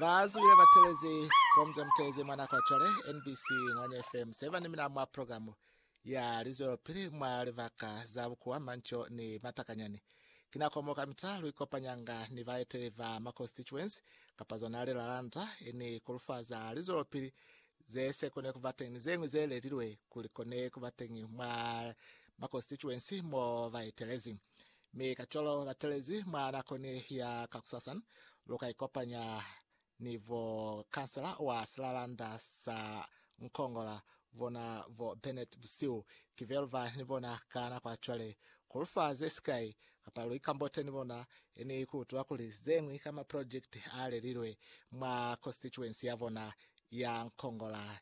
Ba zuile ba telezi komze mutelezi mwa nako cwale NBC Ngwanya FM seba ni mina mwa programu ya lizwelopili mwa libaka za bukuwa manco ni matakanyani. Ki nako mo kamita lu ikopanyanga ni baeteli ba ma constituency kapa zona lilalanda ni kulufaza lizwelopili ze se kone kuba teñi ni zeñwi ze lelilwe kuli kone kuba teñi mwa ma constituency mo ba etelezi. Mi kacwalo batelezi mwa nako ni ya kakusasa, luka ikopanya ni bo kansela wa silalanda sa Nkongola, bona bo Bennett Busiu, ki velva ni bona ka nako ya cwale, kulufa ze sikai, kapa lu ikambote ni bona, ni kuutula kuli zeñwi ka ma project a lelilwe mwa constituency ya bona ya Nkongola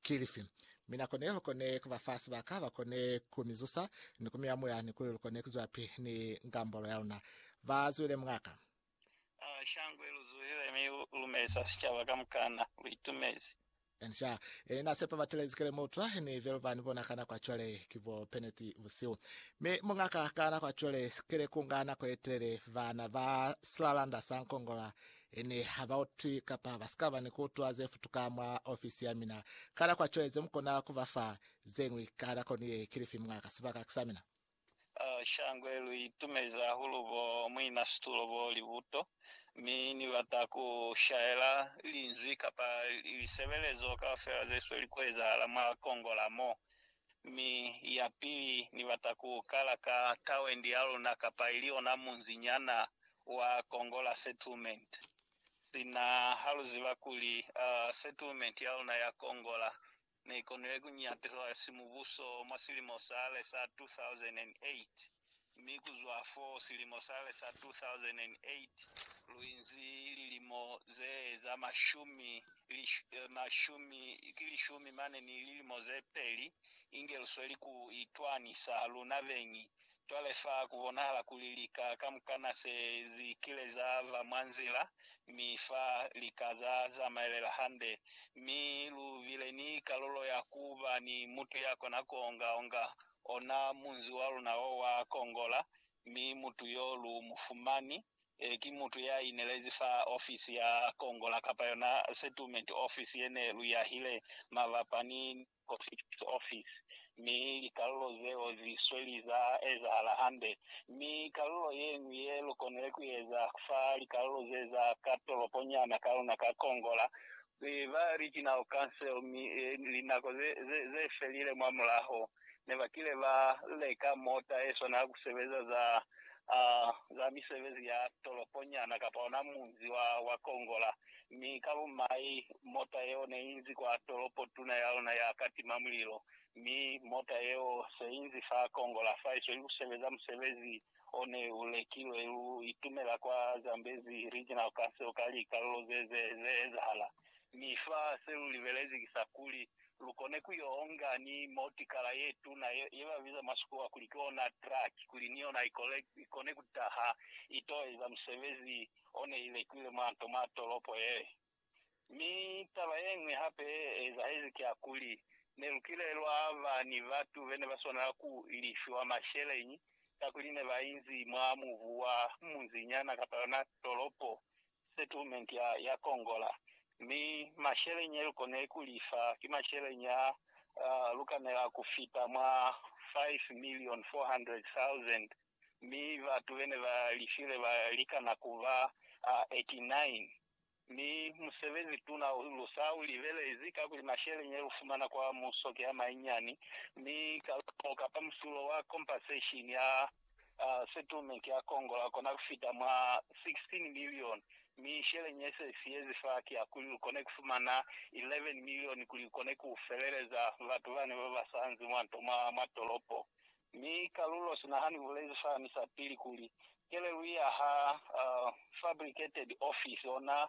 Ki lifi? Mi na kone lu kone ku ba fa sibaka ba kone ku mi zusa ni ku mi amula ni kuli lu kone ku zwilapi ni ngambolo ya luna. Ba zwile mwa ka. Ah, shangwe lu zuhile mi lu lumelisa sicaba kamukana. Lu itumezi. Encia, Ni na sepa batelezi kele mu utwa, ni velu ba ni bona ka nako ya cwale ki bo peneti busihu. Mi mwa ka, ka nako ya cwale, kele ku nga nako ye telele, bana ba silalanda sa nkongola Ene ha ba utwi kapa ba si ka ba ni ku utwa ze futuka mwa ofisi ya mina. Kala kwa cwale ze mu kona ku ba fa ze ñwi, kala koni ye ki lifi mwa ka sibaka sa mina. Shangwe, Lu itumezi hahulu bo muinasitulo bo li buto, mi Ni bata ku shaela linzwi kapa lisebelezo kaufela ze sweli ku ezahala mwa Kongola mo. Mi yapili, Ni bata ku kala ka tawendi ya luna kapa ili ona munzi nyana wa Kongola Settlement. Sina ha lu ziba kuli, uh, settlement ya luna ya Kongola ne ikonile ku nyatulwa si mubuso mwa silimo sale sa 2008. mi ku zwa fo silimo sale sa 2008 lu inzi lilimo ze eza mashumi, eh, mashumi, ki lishumi mane ni lilimo ze peli, inge lu sweli ku itwanisa luna beñi. Cwale fa ku bonahala kuli lika kamukana se zi kile za ba mwa nzila, mi fa lika za zamaelela hande. Mi lu bile ni kalulo ya ku ba ni mutu ya kona ku onga-onga ona munzi wa luna o wa kongola, mi mutu yo lu mu fumani, e, ki mutu ya inelezi fa ofisi ya kongola, kapa yona settlement office ye ne lu yahile mabapa ni Post Office. Mi likalulo zeo zi sweli za ezahala hande. Mi kalulo ye ñwi ye lu konile ku eza fa likalulo ze za ka tolopo nyana ka luna ka kongola, Mi ba li ki nao kanseo, mi linako ze felile mwa mulaho, ne ba kile ba leka mota e swana ya ku sebeza za misebezi ya tolopo nyana kapa ona munzi wa kongola. Mi ka bumai, mota yeo ne i nzi kwa tolopo tuna ya luna ya ka tima mulilo. Mi mota yeo se i nzi fa kongola fa, i sweli ku sebeza musebezi o ne u lekilwe u itumela kwa Zambezi Regional Council ka likalulo ze ze ze ezahala, mi fa se lu libelezi ki sa kuli lu kone ku yo onga ni motikala ye tuna ye, ye ba biza mwa Sikowa kuli ki ona truck, kuli ni yona i kole, i kone ku taha i to eza musebezi o ne i lekiwile mwa nto mwa tolopo ye. Mi taba yeñwi hape ye ezahezi ki ya kuli, ne lu kile lwa ba ni batu be ne ba swanela ku lifiwa masheleñi kakuli ne ba inzi mwa mubu wa munzinyana kapa yona tolopo, settlement, ya, ya Kongola. Mi masheleñi ye lu konile ku lifa ki masheleñi a, a lu kanela ku fita mwa 5,400,000, mi batu be ne ba lifile ba likana ku ba 89. Mi musebezi tuna lu sa u libelezi, kakuli mashele nye lu fumana kwa muso ki a manyinyani, mi kalumo kapa musulo wa compensation ya settlement ya Congo la kona ku fita mwa 16 million, mi shele nye se siyezi fa ki ya kuli lu kone ku fumana 11 million kuli lu kone ku feleleza batu bane ba ba sanzi mwa nto mwa tolopo. Mi kalulo sina ha ni bulezi fani sa pili kuli, kelelu ya ha fabricated office, ona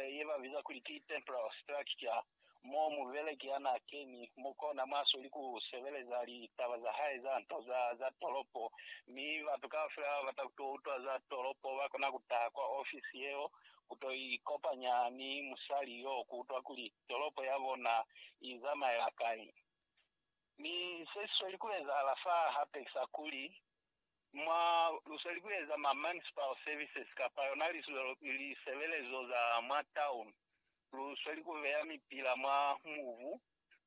ye ba biza kuli ki temporal structure, mo mubeleki ya na keni mo kona mwa soli ku sebeleza litaba za hae za nto za za tolopo. Mi batu kaufela ba bata ku to utwa za tolopo ba kona ku taha kwa office yeo ku to ikopanya ni musali yo ku utwa kuli tolopo ya bona i zamaela kai. Mi se si sweli ku ezahala fa hape ki sa kuli, mwa lu sweli ku eza ma municipal services kapa yona lisebelezo za mwa town, lu sweli ku beya mipila mwa mubu,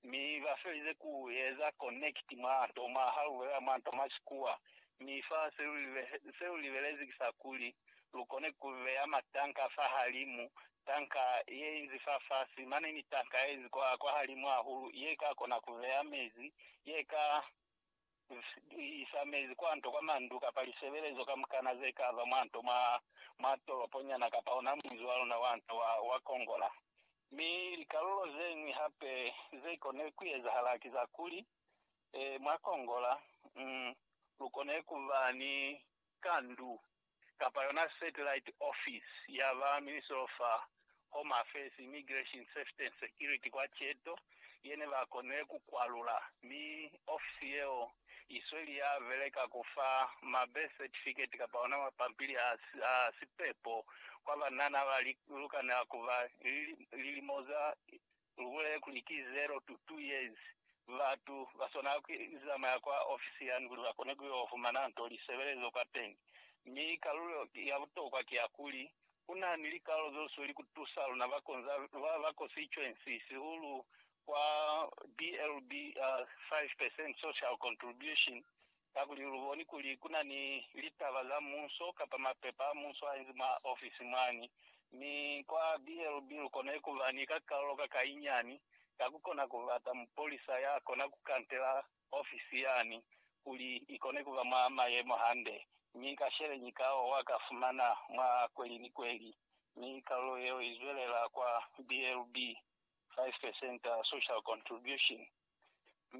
mi ba felize ku eza connect mwa nto mwa, ha lu bulela mwa nto mwa Sikuwa. Mi fa se lu libelezi ki sa kuli, lu kone ku beya matanka fahalimu tanka ye inzi fafasi mane ni tanka ye inzi kwa, kwa halimu hahulu, ye ka kona ku beya mezi, ye ka isa mezi kwa nto, kwa mandu, kapa lisebelezo kamukana ze ka ba mwa nto, mwa, mwa tolopo nyana, kapa ona munzi wa luna wa nto wa, wa kongola. Mi likalulo zeñwi hape ze kone ku ezahala ki za kuli, e, mwa kongola, mm, lu kone ku ba ni kandu kapa yona satellite office ya ba Ministry of Home Affairs, Immigration, Safety and Security kwa Cheto ye ne ba konile ku kwalula, mi ofisi yeo i sweli ya beleka ku fa ma birth certificate kapa ona mapampili a sipepo kwa banana ba li lukanela ku ba ni lilimo za Lubulele kuli ki zero to two years. Batu ba swanela ku zamaya kwa ofisi yani kuli ba kone ku yo fumana nto li sebelezwa kwateñi. Mi kalulo ya butokwa ki ya kuli, ku na ni likalulo zo suli ku tusa luna ba konza ba ba constituency, sihulu kwa BLB, uh, Five Percent Social Contribution, Kakuli lu boni kuli ku na ni litaba za muuso kapa mapepa a muuso a inzi mwa ofisi mwani. Mi kwa BLB lu konile ku ba ni kakalolo ka ka inyani ka ku kona ku bata mupolisa ya kona ku kantela ofisi yani kuli i kone ku ba mwa mayemo hande. Mi ka sheleñi ka o wa ka fumana mwa kweli ni kweli. Mi kalulo yeo i zwelela kwa BLB, 5 percent social contribution.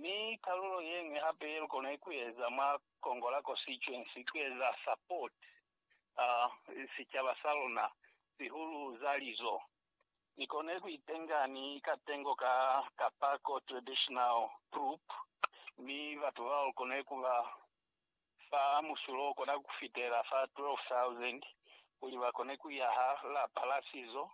Mi kalulo yeñwi hape yelukona kueza mwa Kongola Constituency kueza support sicaba saluna, sihulu za lizo, nikone kuitenga ni katengo ka Kapako Traditional Group mi batu bao lukone kuba fa musulo okona kufitela fa 12,000 kuli bakone kuyaha lapa la sizo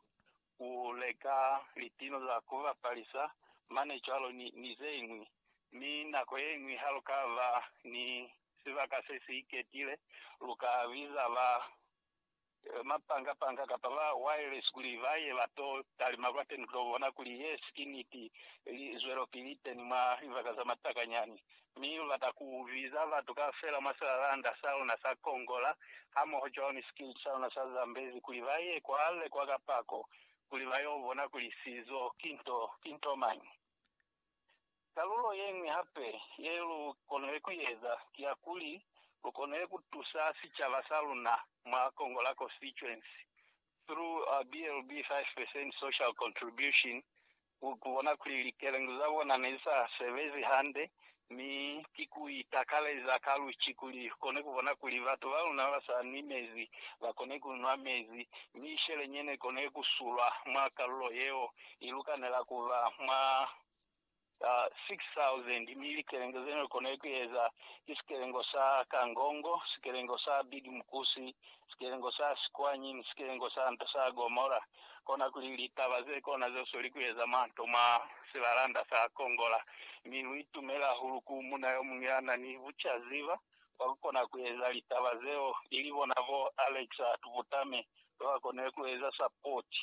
ku leka litino za ku bapalisa mane cwalo ni zeñwi. Mi nako yeñwi ha lu ka ba ni sibaka se si iketile, lu ka biza ba mapanga-panga kapa ba wireless kuli ba ye ba to talima kwateni ku to bona kuli yesi ki niti. Li zwelopili teni mwa libaka za matakanyani Mi lu lata ku biza batu kaufela mwa silalanda sa luna sa Kongola, hamoho cwalo ni sikiliti sa luna sa Zambezi, kuli ba ye kwale kwa kapako, kuli ba y'o bona kuli sizo ki nto, ki nto mañi. Kalulo ye ñwi hape ye lu konile ku i eza, ki ya kuli lu konile ku tusa sicaba sa luna mwa Kongola Konsitituensi, through BLB 5% Social Kontribushini, ku bona kuli likelengi za bona ne sa sebezi hande, mi ki ku itakaleza ka luci kuli ku kone ku bona kuli batu ba luna ba sa nwi mezi ba kone ku nwa mezi, mi sheleñi ye ne kone ku sulwa mwa kalulo yeo i lukanela ku ba mwa 6,000. Mi likelengi ze ne kone ku eza ki sikelengo sa Kangongo, sikelengo sa Big Mkusi, sikelengo sa sikwanyi ni sikelengo sa nto sa Gomora, konakuli litaba zekona zesweli kueza manto mwa silalanda sa Kongola. Mi luitumele hahulu ku muuna yomuñwi yanani bucaziba bwa kukona kueza litaba zeo, ilibona bo Alex Atubutame, babakonile kueza sapoti.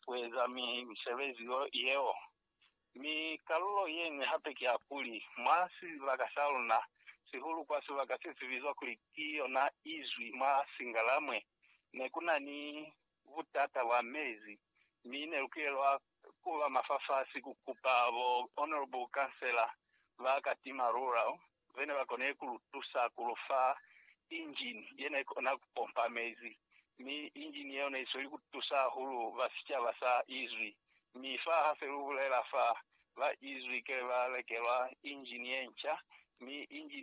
ku eza misebezi yeo. Mi kalulo ye ñwi hape ki ya kuli, mwa sibaka sa luna, sihulu kwa sibaka se si bizwa kuli ki yona Izwi mwa Singalamwe, ne ku na ni butata bwa mezi, mi ne lu kilelwa ku ba mafafasi ku kupa bo Honourable Councillor ba Katima Rural ze ne ba koni ku lu tusa ku lu fa injini ye ne kona ku pompa mezi, mi injini yeo ne i sweli ku tusa hahulu ba sicaba sa izwi. Mi fa ha se lu bulela fa, ba izwi kele ba lekelwa injini ye nca, mi injini